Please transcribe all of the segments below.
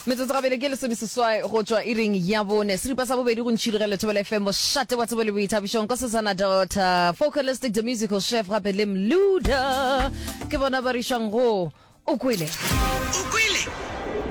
metsotso gabedi ke lesomeseswai go tšwa iring ya bone seripa sa bobedi go ntšhirigela lethobela fm bošate wa tsebo le boithabišong ko sesana dota focalistic the musical chef gape le mluda ke bona ba rišwang go o kwele o kwele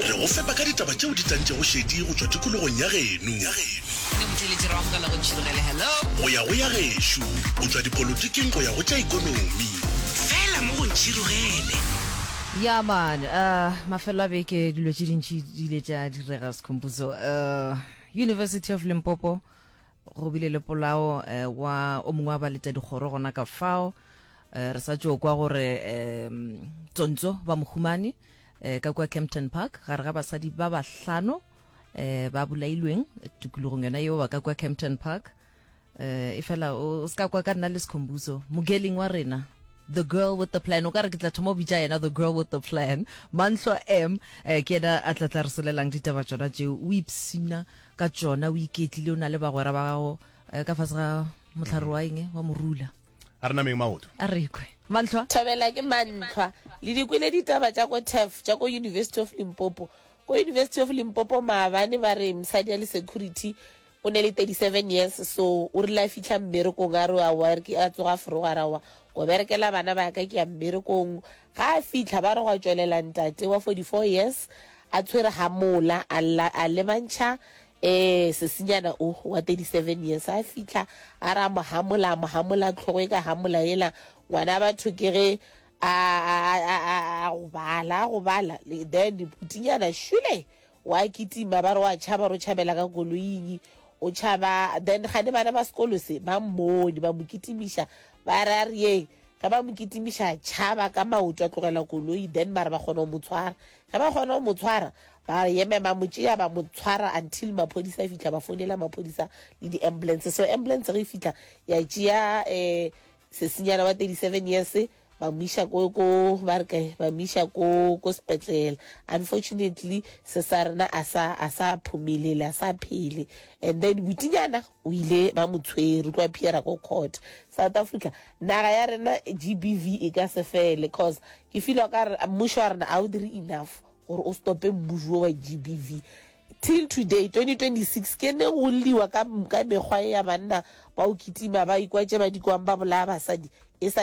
re go fepa ka ditaba tšeo di tantšego šedi go tšwa tikologong ya geno go ya go ya gešo go tšwa dipolotiking go ya go tša ikonomi fela mo go ntšhirogele Ya man, uh, mafelo a beke dilo tše dintši di ile tša direga Sekhompuzo. Uh, University of Limpopo go bile le polao uh, wa o mongwe wa baleta dikgoro gona ka fao. Uh, re sa tšo kwa gore um, tsontso ba mohumane uh, ka kwa Kempton Park gare ga basadi ba bahlano uh, ba bolailweng tikologong yona yeo ba ka kwa Kempton Park. eh, e fela o se ka kwa ka nna le sekhombuso mogeling wa rena the girl with the plan o ka re ke tla thoma o bitša yena the girl with the plan mantlo m eh, ke ena a tla tla re solelang ditaba tsona tšeo o ipsina ka tsona o iketlile o na le bagwera ba gago eh, ka fase ga motlhare wa eng wa morula a re nameng maoto a rekwe mantlhwa thabela ke mantlhwa le dikwele ditaba tša ko tef tša ko university of limpopo ko university of limpopo maabane ba re msadi ya le security O ne le 37 years so o rile a fihla mmerekong a re wa work a tsoga forogo a ra wa go berekela bana ba ka ke ya mmerekong. Ga a fihla ba re gwa tšwelela ntate wa 44 years a tshwere ga mola a lla a lebantšha eh sesinyana o wa 37 years a fihla a ra mo hamola a mo hamola tlhogo e ka hamola ela ngwana batho ke ge a a a a a go bala a go bala then putinyana shule wa kitima ba re wa tšhaba ro tšhabela ka koloing o tšhaba then gane bana ba sekolo se ba mmone ba mo kitimiša ba re a re yeng ge ba mo kitimiša tšhaba ka maoto a tlogela koloi then ba re ba kgona go mo tshwara ge ba kgona go mo tshwara ba yeme ba mo tšea ba mo tshwara until maphodisa a fitlha ba founela maphodisa le di-ambulance so ambulance ge e fitlha ya tšea um Sesinyana wa 37 years ba mo iša ko ko ba re kae ba mo iša ko ko sepetlele unfortunately se sa rena a sa a sa phumelele a sa phele and then butinyana o ile ba mo tshwere o tloa phiera ko court south africa naga ya rena gbv e ka se fele cause ke feel ka re mmušo wa rena a o dire enough gore o stope mmušo wa GBV till today 2026 ke ne go lliwa ka mekgwa ya banna ba o kitima ba ikwatše ba dikwang ba bolaya basadi e sa